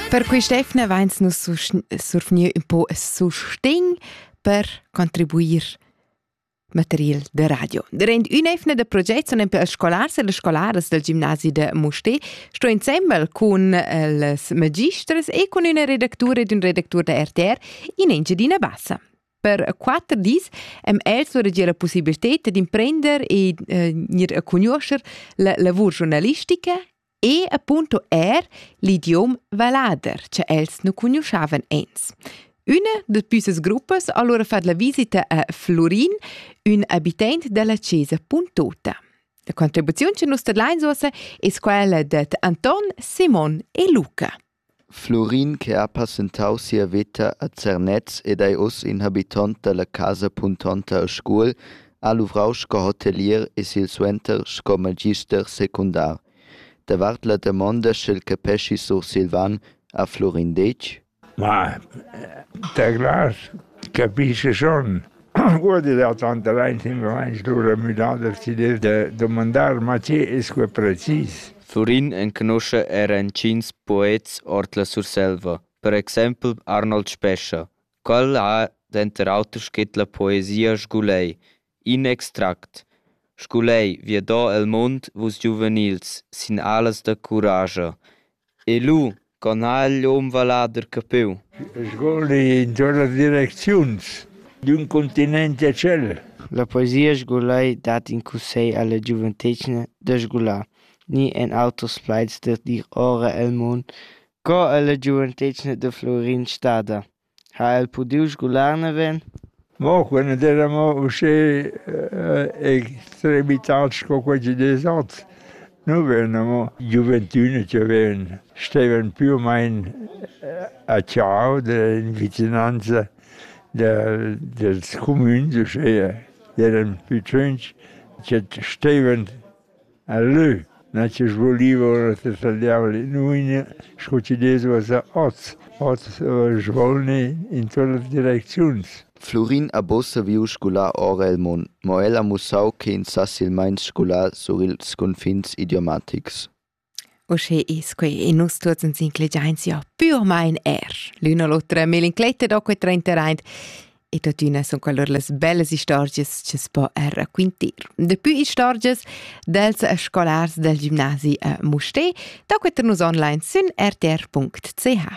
Per quest'efna vains nus survgnieu ün po sustegn per contribuir material da radio. Durant ün'efna da proget sun per scolars e las scolaras del gimnasi da Musté sto insembel cun les magisters e cun üna redactura ed ün redactur da RTR in Engiadina Bassa. Per quatter dis am els surregia la possibilità d'imprender e eh, gnir a cugnuoscher la lavur giornalistica E appunto er l'idiom vallader, che els nu cugnuoschavan ens. Üna da püssas gruppas ha allura fat la visita a Florin, ün abitant della chesa Puntota. La contribuziun che nus tadlains uossa es quella dad Anton, Simon e Luca. Flurin che ha passentau sia veta a Zernez ed ei uss in habitont dalla casa puntonta a Scuol, ha luvrau sco hotelier e silsuenter sco magister secundar. Davart la damonda sch'el capeschi sursilvan ha Flurin detg: Ma, teclas capische schon. Uordi da tantalain simplamaing stura müdà da decider da dumandar ma che es que precis. Turin enconuscha era intgins poets ord la Surselva, per exaimpel Arnold Spescha. Quel ha denter auter scrit la poesia Sgulei, in extract. Sgulei, viadò el mund, vus giuvenils, sin alas da curascha. E lu, con ha igl um vallader capiu? Sgol intuorn las direcziuns d'ün continent a tschel. La poesia sgulei dat in cussegl alla giuventetgna da sgular, ni en auters plaids da dir ora el mund, co ella giuventetgna da Flurin stada. Ha el pudiu sgular naven? Mo quella era mo uschè extremitat sco quei chi des oz. Nu vegna mo giuventüna chi ven, stevan più u main a ciao in vicinanza del dels cumüns uschea. Eran plü tschunch che stevan E leu n'ha chi svoliva ora tessaliar l'inuiglia sco chi dess uossa oz, oz svolni in tuot las direcziuns. Flurin ha buca saviu sgular ora il mund, mo el ha mussau che in sa silmeins sgular sur ils cunfins idiomatics. Uschè es quai e nus tuots ans inclegiains ja pürmaing eir l'üna l'otra melincletta da que trainteraint e tuottüna sun qualur las bellas istorgias cha's po eir raquintir. Dapü istorgias dels scolars dal gimnasi a Mustér da queter nus online sün rtr.ch.